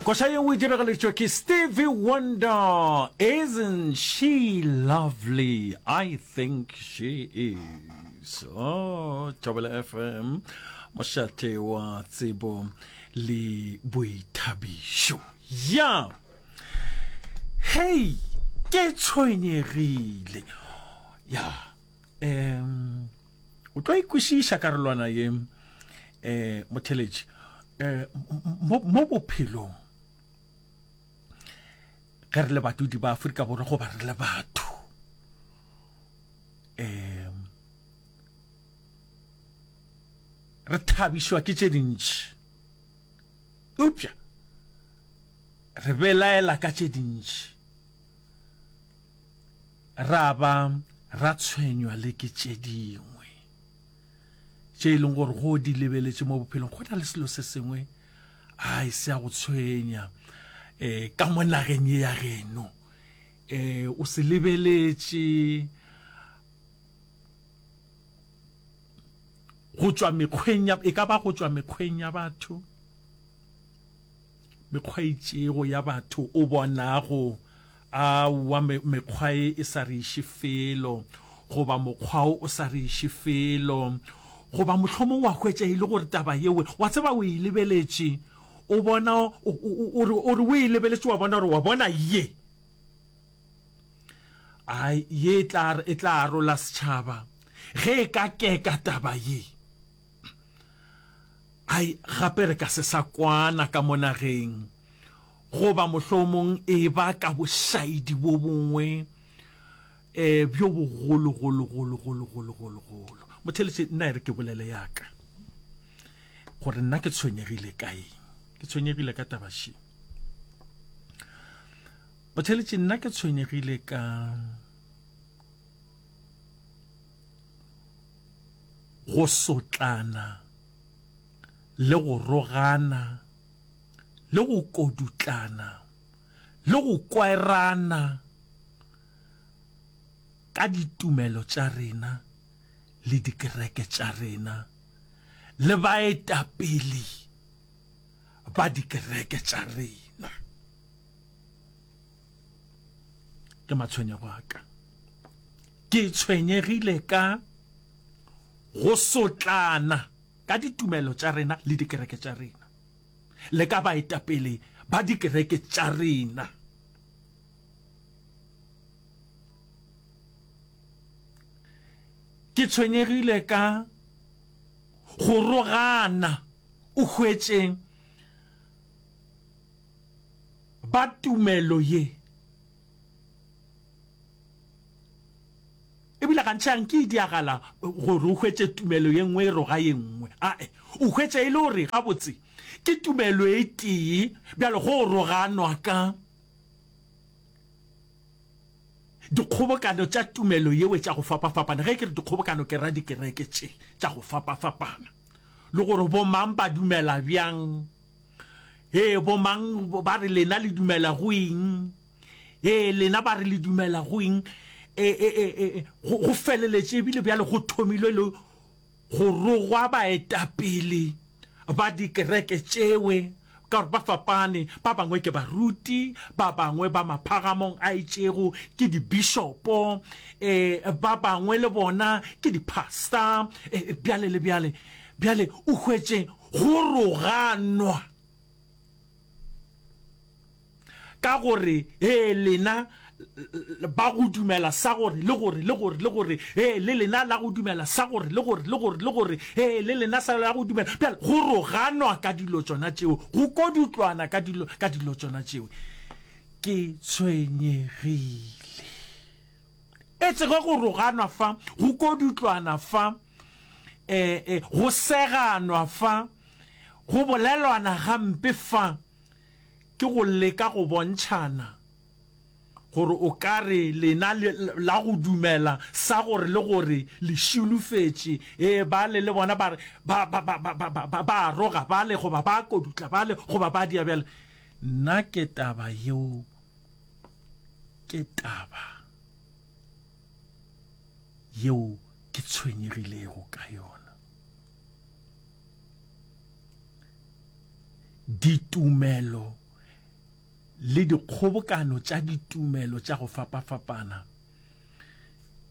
koša yeo e diragaletšwa ke stevie wonder isn't she lovely i think she is oh, tšabela fm mošate wa tsebo le boithabišo ya hei ke tshwenyegile ya um O tlo e kwešiša karolwana ye, um, motheletši. Um, mo, mo bophelong, ge re le badudi ba Afrika Borwa goba re le batho, um, re thabišwa ke tše dintši eupša re belaela ka tše dintši ra ba ra tshwenywa le ke tše dingwe tše e leng gore go di lebeletše mo bophelong go na le selo se sengwe a e se ya go tshwenya um ka mo nageng ye ya geno um o se lebeletše go tšwa mekgweng e ka ba go tšwa mekgweng ya batho Mekgwa e itšego ya batho, o bonago, aowa, me, mekgwa e e sa re iše felo, goba mokgwa o o sa re iše felo. Goba mohlomong wa hwetša e le gore taba yeo, wa tseba, o e lebeletše, o bona, o, o, o re, o re o e lebeletše, wa bona gore, wa bona, ye, ai, ye e tla, e tla arola setšhaba, ge e ka keka taba ye. Ai, gape re ka se sa kwana ka mo nageng, goba mohlomong eba ka bošaedi bo bongwe um bjo bogologologologologologologolo. Motheletše, nna e re ke bolele ya ka gore nna ke tshwenyegile ka eng. Ke tshwenyegile ka taba še. Motheletše, nna ke tshwenyegile ka Go sotlana le go rogana le go kodutlana le go kwaerana ka ditumelo tša rena le dikereke tša rena le baetapele ba dikereke tša rena. ke matshwenyego a ka ke tshwenyegile ka go sotlana ka ditumelo tša rena le dikereke tša rena le ka baetapele ba dikereke tša rena ke tshwenyegile ka go rogana o hwetšeng ba tumelo ye. E bile gantši ga nke e diagala gore o hwetše tumelo ye nngwe e roga ye nngwe. Ae, o hwetša e le gore gabotse ke tumelo e tee bjalo go roganwa ka dikgobokano tša tumelo yeo tša go fapafapana. Ge ke re dikgobokano ke ra dikereke tše tša go fapafapana le gore bomang ba dumela bjang. ee bomang ba re lena le dumela go eng ee lena ba re le dumela go eng e, e, e, e, go feleletše ebile bjale go thomilwe le go rogwa baetapele ba dikereke tšewe ka gore ba fapane ba bangwe ke baruti ba bangwe ba maphagamong a itšego ke dibishopo eh ba bangwe le bona ke dipastor eh, bjale le bjale bjale o hwetše Go roganwa ka gore he lena ba go dumela sa gore le gore le gore le gore he le lena la go dumela sa gore le gore le gore le gore he le lena sa la go dumela bjale go roganwa ka dilo tsona tšeo go kodutlwana ka dilo ka dilo tsona tšeo ke tshwenyegile e tsege go roganwa fa go kodutlwana fa eh, eh, go seganwa fa go bolelwana gampe fa ke go leka go bontšhana gore o ka re lena la go dumela sa gore le gore le šulufetše ee ba le le bona ba ba roga ba le goba ba kodutla ba le goba ba dia bjale nna ke taba yeo ke taba yeo ke tshwenyegilego ka yona. Ditumelo le dikgobokano tša ditumelo tša go fapafapana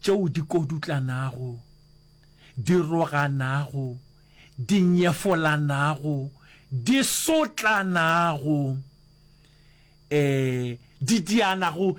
tšeo di kodutlanago, di roganago, di nyefolanago, di sotlanago, eh, di dianago,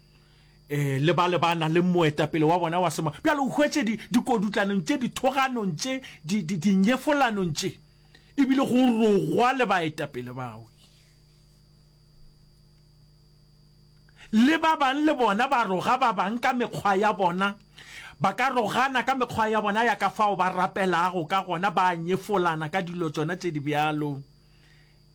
e le ba le ba na le moetapele wa bona wa sema bjalo o hwetše dikodutlanong tše dithoganong tše dinyefolanong tše ebile go rogwa le baetapele bao le ba bang le bona ba roga ba bang ka mekgwa ya bona ba ka rogana ka mekgwa ya bona ya ka fao ba rapelago ka gona ba nyefolana ka dilo tsona tše di bjalo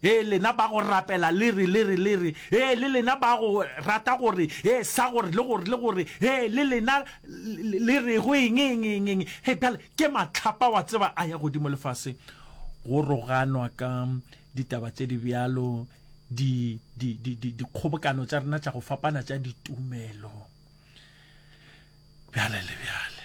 Ee, lena ba go rapela le re, le re, le re, Ee, le lena ba go rata go re, Ee, sa gore, le gore, le gore, Ee, le lena le rego eng, eng, eng, eng. Hei, bjale, ke mahlapa, wa tseba, a ya godimo le fase. Go roganwa ka ditaba tše di bjalo, di, di, di, di, dikgobokano tša rena tša go fapana tša ditumelo, bjale le bjale.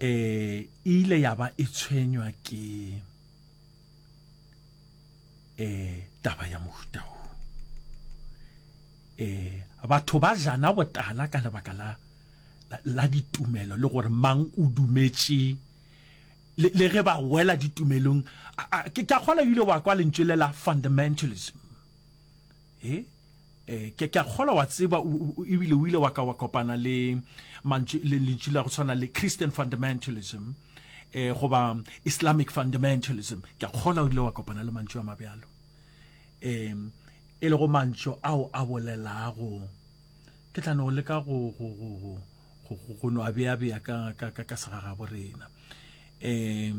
e ile ya ba e tshwenywa ke e taba ya mohuta o e batho ba jana botala ka lebaka la la ditumelo le gore mang o dumetše le ge ba wela ditumelong ke ka kgola ile wa kwa lentšwe le la fundamentalism He, eh, ke, ke a kgolwa wa tseba, ebile o ile wa ka wa kopana le mantšu, le lentšu la go tshwana le Christian fundamentalism, eh, goba Islamic fundamentalism. Ke a kgolwa o ile wa kopana le mantšu a mabjalo, eh, e lego mantšu ao a bolelago. Ke tla no leka go, go, go, go, go, go, go no a bea bea ka, ka, ka, ka segagabo rena. Eh,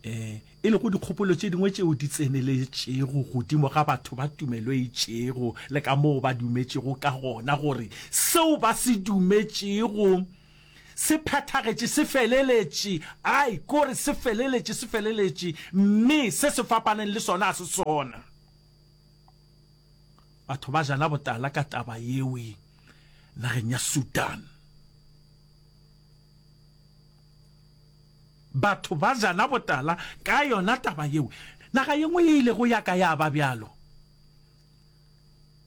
e e lego dikgopolo tše dingwe tšeo di tseneletšego godimo ga batho ba tumelo e itšego le ka moo ba dumetšego ka gona gore seo ba se dumetšego se phethagetše se feleletše ai kore se feleletše se feleletše mme se se fapaneng le sona a se sona batho ba jana botala ka taba yewe nageng ya sudan Batho ba jana botala ka yona taba yeo. Naga ye nngwe ye ilego ya ka ya ba bjalo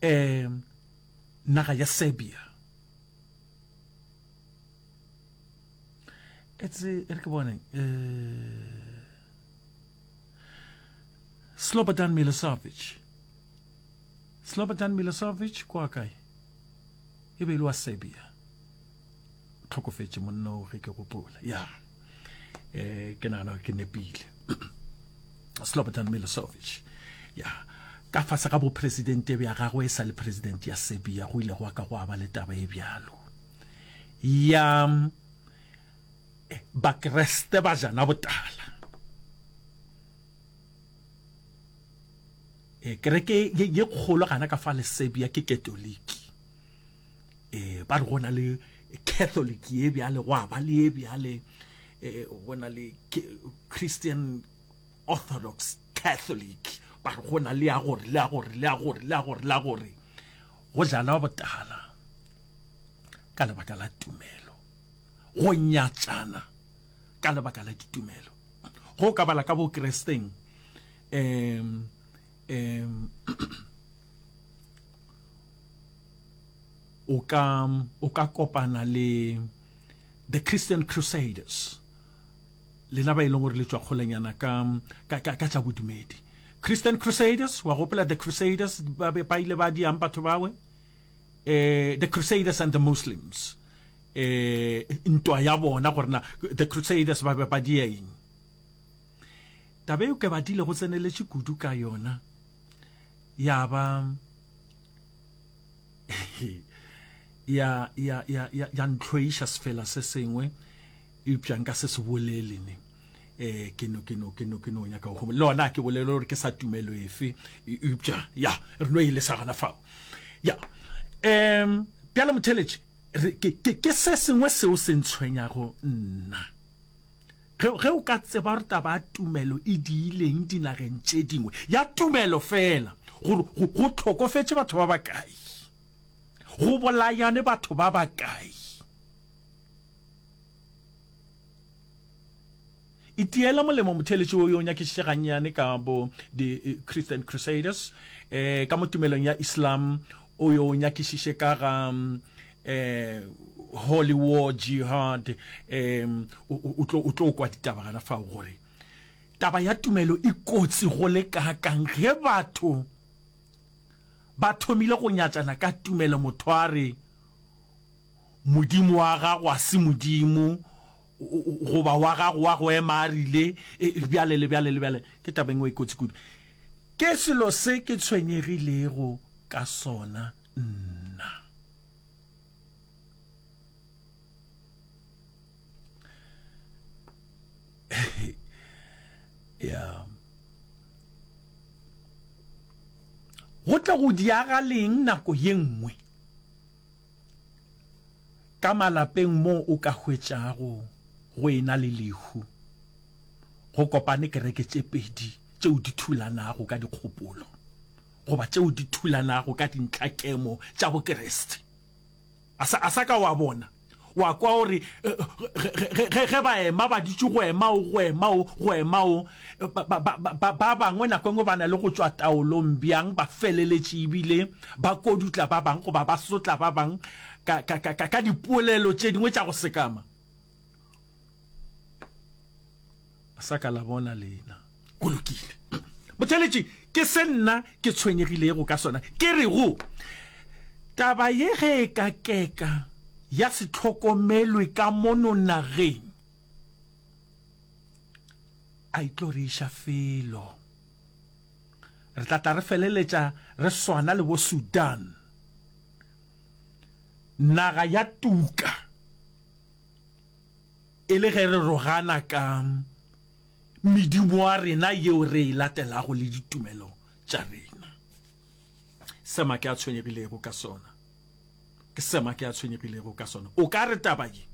e naga ya Serbia. Etse e re ke bone e Slobodan Milosevic. Slobodan Milosevic kwa kae? E be e le wa Serbia. tlhokofetše monna o ge ke gopola ya um ke nagana gore ke nepile slobodan milosovic ya ka fase ga bopresidente bja gagwe e sa le president ya serbia go ile go wa ka go aba le taba e bjalo ya eh, bakreste ba jana botala eh, kereke ye kgolo gana ka fa le serbia ke katoliki eh ba re go na le catholic ye bjale go ba le ye bjale eh go na le christian orthodox catholic ba re go na le ya gore le ya gore le ya gore le ya gore le ya gore go jala botala ka lebaka la tumelo go nyatšana ka lebaka la ditumelo go ka bala ka bokresteng um um o ka, o ka kopana le The Christian Crusaders, lena ba e leng gore le tšwa kgolenyana ka, ka, ka, ka tša bodumedi. Christian Crusaders, wa gopola The Crusaders, ba be ba ile ba diang batho bawe? Eh, The Crusaders and the Muslims. Eh, ntwa ya bona gore na The Crusaders ba be ba dia eng? Tabe eo ke badile go tseneletše kudu ka yona, ya ba, ya ya ya ya ya ntlhoiša sefela se sengwe eupša nka se se bolele ne eh ke no ke no ke no ke no nyaka go le ona ke bolele gore ke sa tumelo efe e, eupša ya re no e le sa gana fao ya um bjale motheletše ke se sengwe seo se ntshwenyago nna Ge, ge o ka tseba gore taba ya tumelo e diileng dinageng tše dingwe, ya tumelo feela, gore go, go hlokofetše batho ba bakae, go bolayane batho ba bakae. Itiela molemo motheeletši wo yo o nyakišitše gannyane ka bo di Christian Crusaders, eh, ka mo tumelong ya Islam, o yo o nyakišiše ka ga eh holy war jihad um o tlo kwa ditaba gana fao gore taba ya tumelo e kotsi go le kakang ge batho ba thomile go nyatšana ka tumelo motho a re modimo wa gago a se modimo goba wa gago wa go ema a rile e, e, bjale le bjale le bjale ke taba engwe e kotsi kudu ke selo se ke tshwenyegilego ka sona nna. ya go tla go diaga leng nako ye nngwe ka malapeng moo o ka hwetšago go ena le lehu go kopane kereke tše pedi tšeo di thulanago ka dikgopolo goba tšeo di thulanago ka dintlhakemo tša Bokriste. A sa, a sa ka wa bona, wa kwa o re, ge ba ema ba ditše go ema o, go ema o, go ema o, ba bangwe nako engwe ba na le go tšwa taolong bjang, ba feleletše ebile ba kodutla ba bang goba ba sotla ba bang ka, ka, ka, ka, ka dipolelo tše dingwe tša go sekama. sa ka la bona lena go lokile botheletši ke se nna ke tshwenyegilego ka sona ke re go taba ye ge e ka keka ya se tlhokomelwe ka mono nageng a e tlo re iša felo re tla tla re feleletša re swana le bo sudan naga ya tuka e le ge re rogana ka medumo wa rena yeo re e latelago le ditumelo tša rena. Sema ke a tshwenyegilego ka sona, ke sema ke a tshwenyegilego ka sona. O ka re taba ye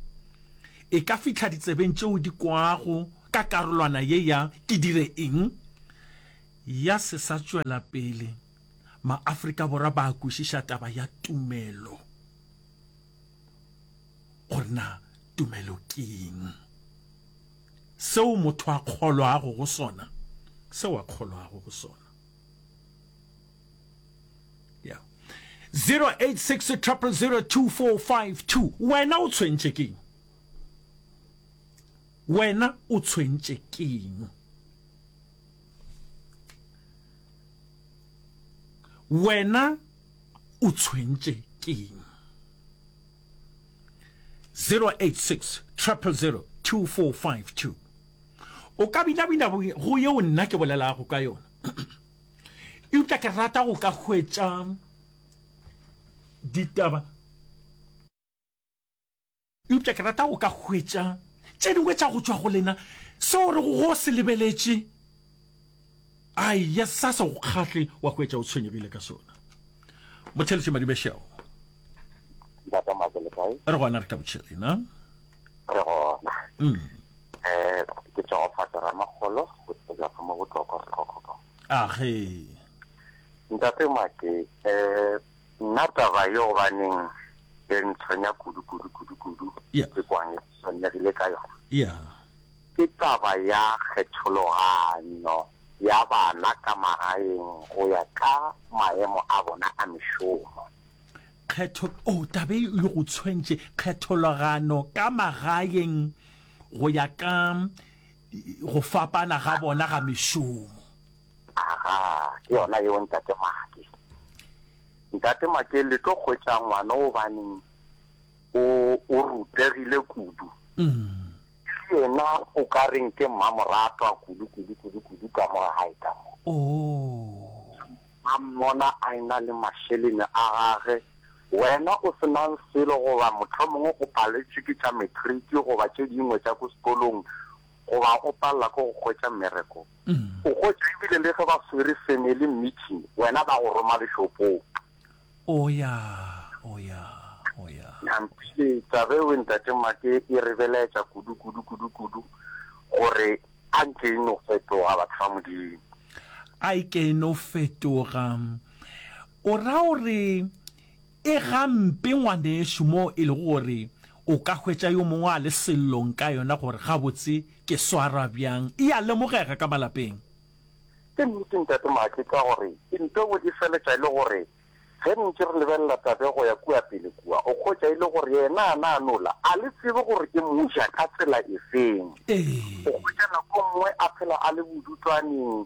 e ka fihla ditsebeng tšeo di kwago ka karolwana ye ya Ke Dire Eng? ya Se Sa Tšwela Pele. MaAfrika Borwa ba kwešiša taba ya tumelo gore na tumelo ke eng. Seo motho a kgolwago go sona, seo a kgolwago go sona. Yeah. 086 222 wena o tshwentše keng wena o tshwentše keng wena O tshwentše keng? 086 000 2452 O ka binabina go yeo nna ke bolelago ka yona. Eupša ke rata go ka hwetša ditaba Eupša ke rata go ka hwetša tše dingwe tša go tšwa go lena, seo o rego go se lebeletše. Aija, sa se go kgahle wa hwetša o tshwenyegile ka sona. Motheletše Madibe Sheo. Ntate Mako, le kae? Re gona, re tabotše lena. Re gona. Mm. Eh, ke tšogofatša Ramakgolo, go tsebja ka mo botlokwa, botlokwa. Age. Ntate Make, eh, Nna taba ye gobaneng e ntshwenya kudu kudu kudu kudu Yeah. ke kwang e tshwenyegile ka yona Yeah. ke taba ya kgethologanyo ya bana ka magaeng go ya ka maemo a bona a mešomo. Kgetho o taba e e go tshwentše kgethologano ka magaeng go ya ka go fapana ga bona ga mešomo. Aga, ke yona yeo Ntate Make. Ntate Make, le tlo hwetša ngwana o baneng o, o rutegile kudu. Le yena o ka reng ke mmamoratwa kudu, kudu, kudu, kudu ka mo ga gae ka mo. Oh. A mmona a ena le mašelene a gage, wena o se nang selo goba mohlomongwe o paletšwe ke tša matric goba tše dingwe tša ko sekolong, goba o palela ke go hwetša mmereko, o hwetša e bile le ge ba swere family meeting wena ba go roma lešopong. Oya, oya, oya. Nampile, taba eo ntate Make e re belaetša kudu, kudu, kudu, kudu gore a nke e no fetoga batho ba Modimo. A e ke e no fetoga. O ra gore. E ga mpe ngwanešu moo e lego gore o ka hwetša yo mongwe a le sellong ka yona gore gabotse ke swarwa bjang. E a lemogega ka malapeng. Ke nnete Ntate Maake ka gore e nto bo e feletša e le gore ge re ntše re lebelela Tabe go ya kua pele kua o hwetša e le gore yena a na a no la a le tsebe gore e mo ja ka tsela efeng. O hwetša nako nngwe a phela a le bodutwaneng,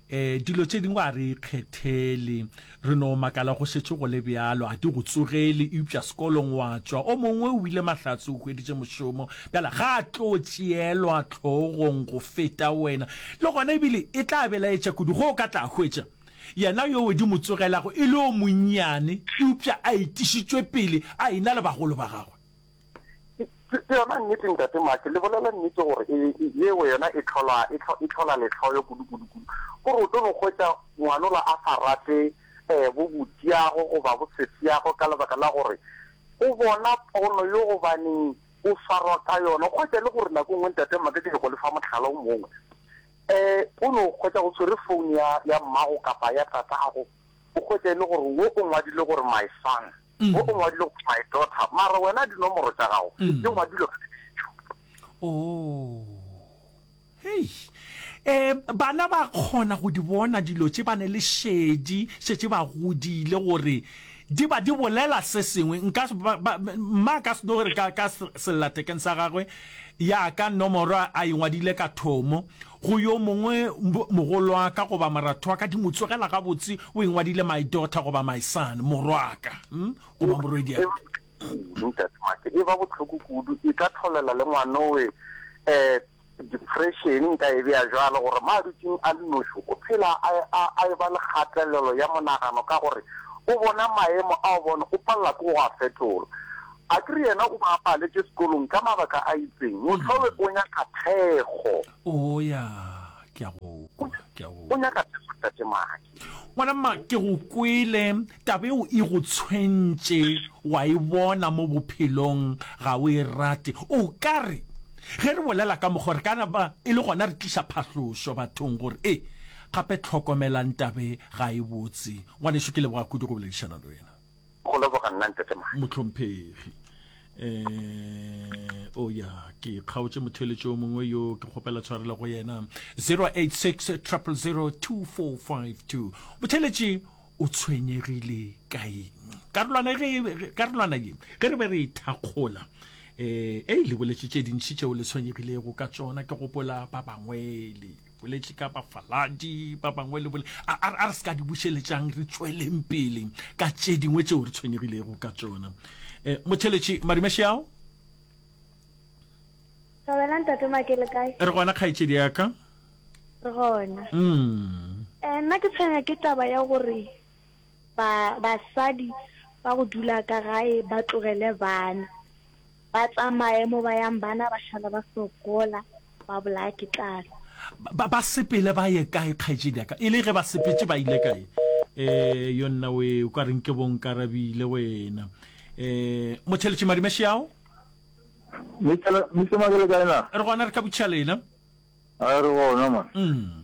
E, dilo tše dingwe a re ikgethele. Re no makala go šetše go le bjalo, a di go tsogele, eupša sekolong wa tšwa. O mongwe o ile mahlatse, o hweditše mošomo, bjale ga a tlo tšeelwa tlhogong go feta wena. Le gona ebile e tla belaetša kudu ge o ka tla hwetša yena yoo di mo tsogelago e le o monnyane eupša a itišitšwe pele a ena le bagolo ba gagwe. ke yona nnete ntate make le bolela nnete gore e, e, e, yeo yona e tlhola e tlhola letlhoyo kudu-kudu-kudu gore o tlo no hwetša ngwanola a sa rate um bo botiago goba bo sesiago ka lebaka la gore o bona pono yo gobaneng o swarwa ka yona kgwetsa le gore nako e nngwe ntate make ke go lefa motlhala o mongwe um o no kgwetsa go tshwere founu ya mmago kapa ya tatago o kgwetsa e le gore wo o ngwadile gore my son Mo o ngwadile gore my daughter, mara wena dinomoro tša gago di ngwadilwe ka dipitšo. Oh. Hei. Um, bana ba kgona go di bona dilo tše, ba ne le šedi, šetše ba godile, gore di ba di bolela se sengwe. Nka, mma ka se no re ka, ka sellathekeng sa gagwe, ya ka nomoro a e ngwadile ka thomo. Go yo mongwe, mogolwa ka goba morathwa ka, di mo tsogela gabotse, o engwadile my daughter goba my son, morwa ka, goba morwedia ka. Ntatemake, e ba bohloko kudu, e ka tlholela le ngwanowe um depression, nka e bea jwalo, gore mo a dutšeng a le noši, o phela a, a, a e ba le kgatelelo ya monagano ka gore o bona maemo ao, bona o palela ke go a fetola. A ke re yena o ba a paletše sekolong ka mabaka a itseng? Mohlolwe o nyaka thekgo. Oo, ya, ke a go kwa, ke a go O kwa. nyaka thekgo, Tate Maki. Ngwana mma, ke go kwele. Taba eo e go tshwentše, wa e bona, mo bophelong. Ga o e rate. O ka re, ge re bolela ka mokgwa o, re ka na ba e le gona re tliša phahlošo bathong, gore, ee, gape hlokomelang taba e, ga e botse. Ngwanešu, ke leboga kudu go boledišana le wena. Go leboga nna Ntate Mane. Mohlomphegi. Eh, oh ya, ke kgaotše motheletši o mongwe yo ke kgopela tshwarelo go yena. 086 000 2452. Motheletši o tshwenyegile ka eng? Karolwana ge karolwana ye ge re be re ithakgola eh e le boletše tše dintši tšeo le tshwenyegilego ka tšona ke gopola ba bangwele boletše ka bafaladi ba bangwe le bole a a re se ka di bušeletšang re tsweleng pele ka tše dingwe tšeo re tshwenyegilego ka tsona um eh, motheletši marimešeao Sabela ntate Makele kae? re gona kgaetšedi ya ka Re gona. mm. Eh nna ke tshwenya ke taba ya gore ba basadi ba go dula ka gae ba tlogele bana. Ba tsamaye mo ba yang bana ba šala ba sokola, ba bolaya ke tlala. Ba, ba sepele ba ye kae kgaetšedi ya ka? E le ge ba sepetše ba ile kae? Eh, yo nna we, o ka reng ke bo Nkarabile wena. Eh, motheletši Madime Xiao? Mister Mister Mabele kae na? Re gona re ka botšiša lena. A re gona man. Mm.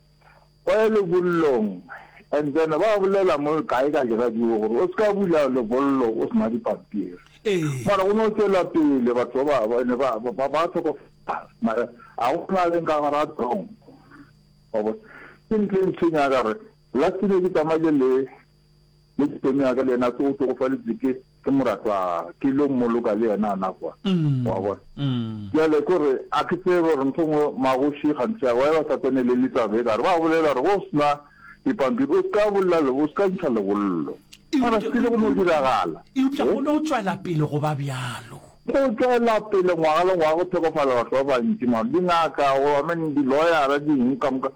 O ye lebollong and then ba bolela mo kae ka diradio gore o se ka bula lebollo o sena dipampiri. Mara o ne o tšwela pele batho ba ba ne ba ba ba tlhokofala mara a go na leng ka gara tong. Wa bona ke ntho e ntshwenya ka gore last ne ke tsamaile le Le sperm ya ka le yena se o tšogofaletše ke ke moratwa ke lo mmoloka le yena na kwa wa bona jale kore a ke tsebe gore ntho ngwe magoši gantsi a wa ba sa tsene le le taba e kare ba bolela gore go sna dipampiri o ska bolla le o ska ntsha lebollo mara se le go no diragala e upša go no tswela pele go ba bjalo go tswela pele ngwaga le ngwaga go thekofala batho ba bantši mara di ngaka go amene di lawyer di eng ka moka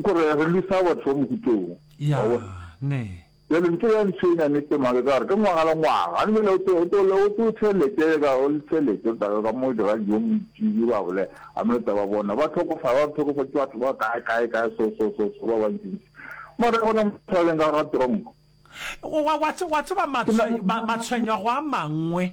kore re lisa batho ba mokutong Ya, ne. Bjale ntho ya ntshwenya ne tema ke ka gore ke ngwaga le ngwaga a nmele o tlo o tlo o tlo tšhelete ka o le tšhelete ka ka mo dira dijo moitšile ba bole a mo tsa ba bona ba tlhokofa ba tlhokofa ke batho ba kae kae kae so so so so ba ba ntsi mara gona mo tshwaleng ka ga tronko wa wa wa tseba matshwenywa go a mangwe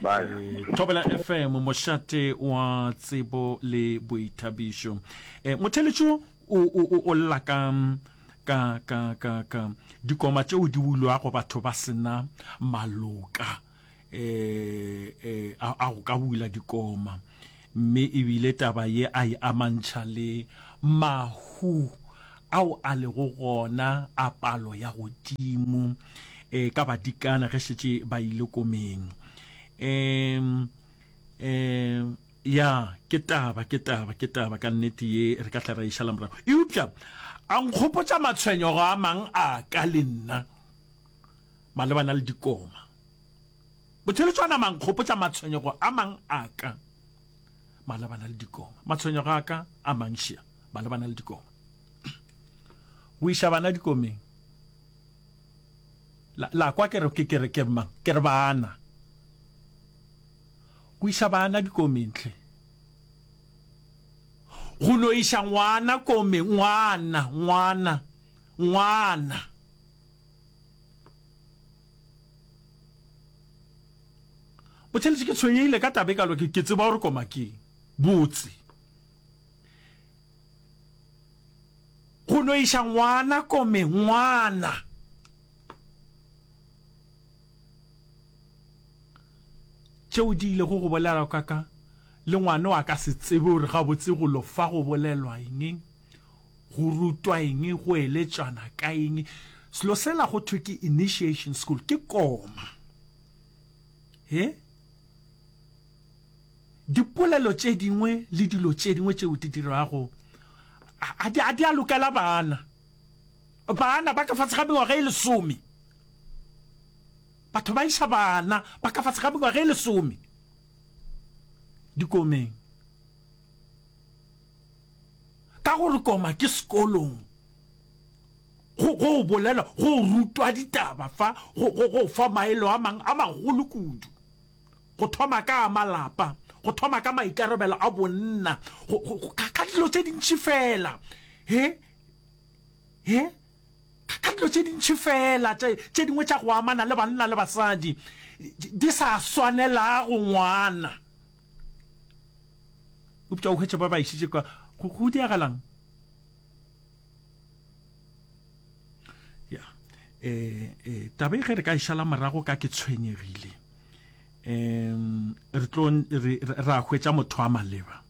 Eh, thobela fm mošate wa tsebo le boithabišo eh, motheletšo o lla ka ka ka ka ka dikoma tšeo di bulwago batho ba sena maloka eh, eh, a go ka bula dikoma Mme e bile taba ye a e amantšha le mahu ao a lego gona a palo ya godimo ka badikana ge šetše ba ile komeng. Um, um, ya, ke taba, ke taba, ke taba ka nnete ye re ka tla ra e šala morago. Eupša a nkgopotša matshwenyogo a mang a ka le nna malebana le dikoma. Botšheletšo a nama a nkgopotša matshwenyego a mang a ka malebana le dikoma. Matshwenyego a ka a mantšia malebana le dikoma. Go iša bana dikomeng. La, la kwa ke re, ke, ke re, ke re mang? Ke re bana. Go iša bana dikomeng hle. Go no iša ngwana komeng, ngwana, ngwana, ngwana. Botšheletše ke tshwenyehile ka taba e kalo ke ke tseba gore koma keng botse. Go no iša ngwana kome ngwana. Tšeo di ile go go bolela ka ka le ngwana wa ka se tsebe gore gabotse go lo fa go bolelwa eng. Go rutwa eng? Go eletšwana ka eng? Selo sela go thwe ke initiation school ke koma. He? Dipolelo tše dingwe le dilo tše dingwe tšeo di dirago a di a di a lokela bana. Bana ba ka fatshe ga mengwaga e lesome. Batho ba isa bana ba ka fatshe ga mengwaga e lesome dikomeng. Ka gore koma ke sekolong, go go bolela go rutwa ditaba fa go go go fa maelo a mang a magolo kudu. Go thoma ka a malapa, go thoma ka maikarabelo a bonna, go go go ka ka dilo tse dintši fela. He, he, ka ka dilo tse dintši fela tše tše dingwe tša go amana le banna le basadi di sa swanelago ngwana. upša o hwetša ba ba išitše ka go go diagalang ya eh eh tabe ge re ka išala morago ka ke tshwenyegile um re tlo ra hwetša motho a maleba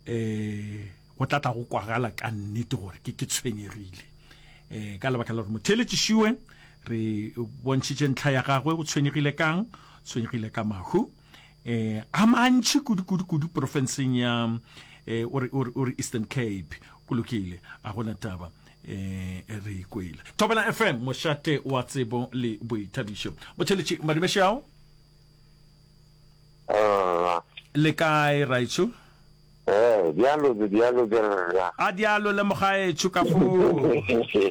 eh go tla tla go kwagala ka nnete gore ke ke tshwenyegile eh ka lebaka la gore motho eletšišiwe re bontšhitše ntlha ya gagwe go tshwenyegile kang tshwenyegile ka mahu eh, a mantši kudu-kudu-kudu porofenseng ya eh, o re eastern cape go lokile a gona taba eh re ikwele thobela fm mošate wa tsebo le boithabišo botšheletše madumešao ah. le kae raitšho eh, bjalo bjalo a dialo le mogaetšho ka foo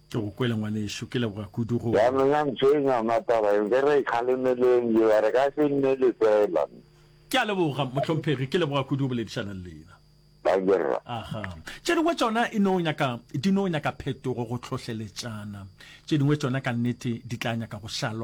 Ke go kwele ngwanešu, ke leboga kudu go. Yanong ya ntshwenya yona taba eo, ke re ikgalemeleng yo a re ka se nne lefela. Ke a leboga mohlomphegi, ke leboga kudu go boledišana le lena. Dangerra. Aha. Tše dingwe tšona e no nyaka, di no nyaka phetogo go hlohleletšana. Tše dingwe tšona ka nnete di tla nyaka go šalwa.